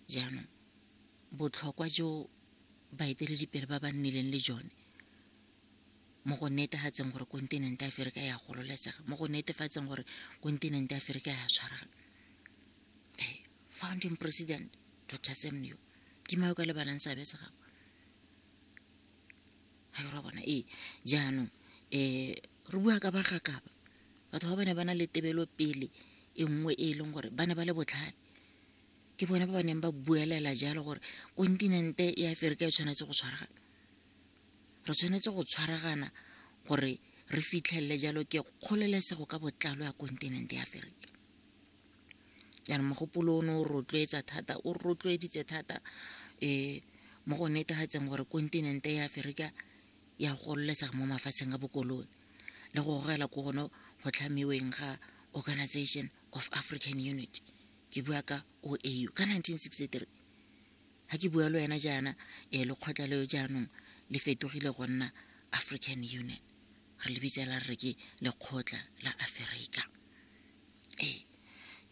jaanong botlhokwa jo baeteledipele ba ba nnileng le jone mo go netefatseng gore kontinente aferika ya gololesega mo go netefatseng gore kontinente aferika ya tshwaragana founding president dr semneo ke mayo ka lebalang seabe se gago ga re bona ee jaanong um re bua ka bagakaba Batho ba ba ne ba na le tebelopele e nngwe e e leng gore ba ne ba le botlhale. Ke bone ba ba neng ba buelela jalo gore kontinente ya Aferika e tshwanetse go tshwaragana. Re tshwanetse go tshwaragana gore re fitlhelele jalo ke kgololesego ka botlalo ya kontinente ya Aferika. Jaanong mogopolo o ne o rotloetsa thata, o rotloeditse thata um mo go netegatseng gore kontinente ya Aferika ya gololesega mo mafatsheng a bokolone. le go gogela ko gone go tlhamiweng ga organization of african unity ke bua ka o a u ka 1963 ga ke bua le wena jaana um lekgotla leo jaanong le fetogile go nna african union re le bitsela re ke lekgotla la aferika ee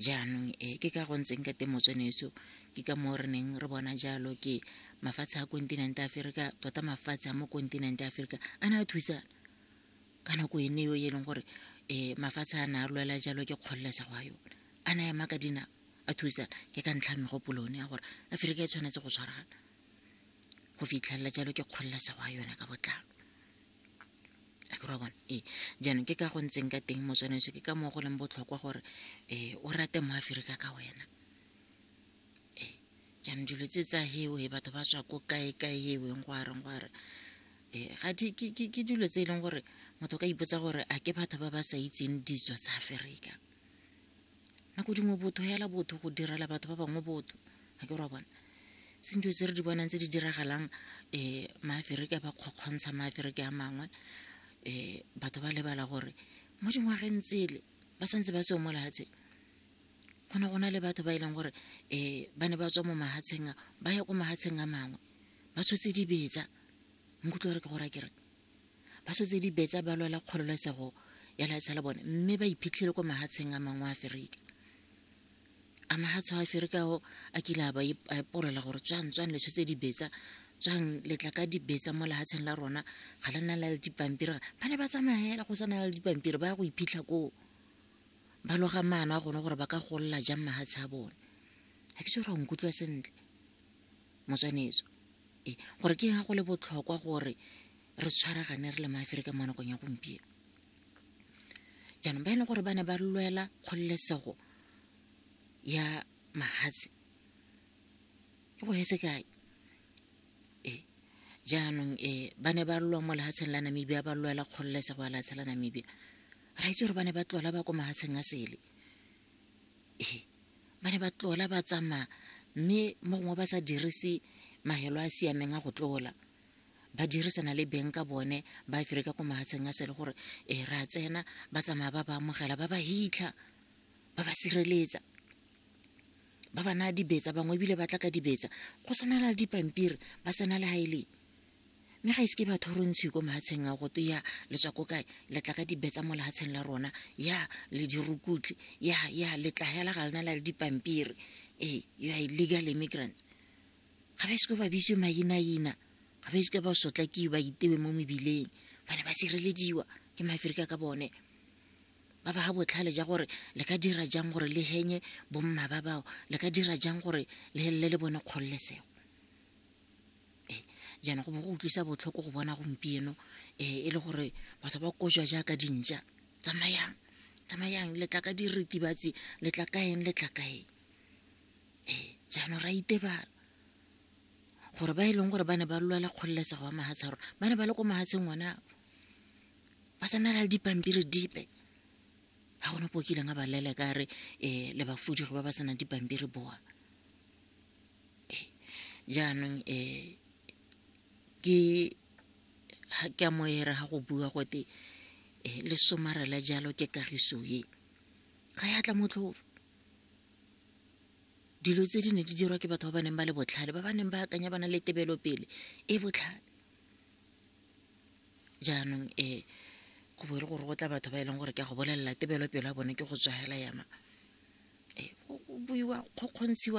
jaanong um ke ka go ntseng ka teng motsweneso ke ka moo re neng re bona jalo ke mafatshe a kontinente aferika tota mafatshe a mo kontinente aferika a ne a thusana ka nako ene eo e leng gore um mafatshe a na a lwela jalo ke kgololesego ya yone a na ema ka dinao a thusana ke ka ntlha ya megopolo one ya gore aforika e tshwanetse go tshwaragana go fitlhelela jalo ke kgololesego ya yone ka botlalo akere wa bona ee jaanong ke ka go ntseng ka teng motswana eso ke ka moo go leng botlhokwa gore um o rate mo aforika ka wena ee jaanong dilo tse tsa hewe batho ba tswa ko kae-kae heweng go are go are um ga di ke dilo tse e leng gore motho ka ipotsa gore a ke batho ba ba sa itseng ditso tsa aferika nako dingwe botho hela botho go direla batho ba bangwe botho ga ke ra bona se dilo tse re di bonang tse di diragalang um maaferika ba kgokgontsha maaferika a mangwe um batho ba lebala gore mo dingwageng tsele ba santse ba seo mo lefatsheng go ne go na le batho ba e leng gore um ba ne ba tswa mo mahatsheng a ba ya ko mahatsheng a mangwe ba tshotse dibetsa nkutlwa gore ke gore ke re ba tshotse dibetsa ba lwela kgololesego ya laetsha la bone mme ba iphitlhele ko mahatsheng a mangwe a aferika a mahatsho a aferika ao a kile a ba epolola gore tswang tswang le tshotse dibetsa tswang letla ka dibetsa mo lehatsheng la rona ga le na la le dipampiri ba ne ba tsamaya fela go sa na le dipampiri ba ya go iphitlha koo ba loga maano a gone gore ba ka golola jang mahatshe a bone ga ke tsere nkutlwa sentle motswanetso e gore ke ga go le botlhokwa gore re tshwaragane re le maaferika mo nakong ya gompieno jaanong ba e leng gore ba ne ba lwela kgololesego ya mahatshe ke go etse kae jaanong um ba ne ba lwa mo lefatsheng la namibia ba lwela kgololesego ya lefatshe la namibia ra itse gore ba ne ba tlola ba ko mahatsheng a sele ee ba ne ba tlola ba tsamaya mme mo gongwe ba sa dirise mahelo a siameng a go tlola ba dirisana le beng ka bone ba fere ka ko mahatsheng a sele gore ee ra tsena ba tsamaya ba ba amogela ba ba hitlha ba ba sireletsa ba ba naya dibetsa bangwe ebile ba tla ka dibetsa go tshwanela le dipampiri ba tsena le ga e leng mme ga ise ke batho re ntshiwe ko mahatsheng a goto ya le tswa ko kae le tla ka dibetsa mo lehatsheng la rona ya le dirukutlhi ya ya le tla hela ga lena la le dipampiri ee you are illegal immigrants ga ba ise ko ba bitswe mainaina ga ba ise ka ba sotlakiwe ba itewe mo mebileng ba ne ba sirelediwa ke maaferika ka bone ba ba ga botlhale ja gore le ka dira jang gore le henye bomma ba bao le ka dira jang gore le helele le bone kgololesego jaana go bo go utlwisa botlhoko go bona gompieno e le gore batho ba kojwa jaaka dintšwa tsamayang tsamayang le tla ka diritibatsi le tla ka eng le tla ka eng jaanong ra itebala gore ba e leng gore ba ne ba lwela kgololesego ya mafatshe a rona ba ne ba le ko mafatsheng one ao ba sa na le dipampiri dipe ga gona ope o kileng a ba leleka a re le ba fuduge ba ba senang dipampiri bowa. Jaanong ke a mo era ga go bua gote le somarela jalo ke kagiso e ga ya tla motlhofo dilo tse di ne di dirwa ke batho ba ba neng ba le botlhale ba ba neng ba akanya ba na le tebelopele e botlhale jaanong go bo e le gore go tla batho ba e leng gore ke a go bolelela tebelopele ya bone ke go tswa hela yana go buiwa kgokgontshiwa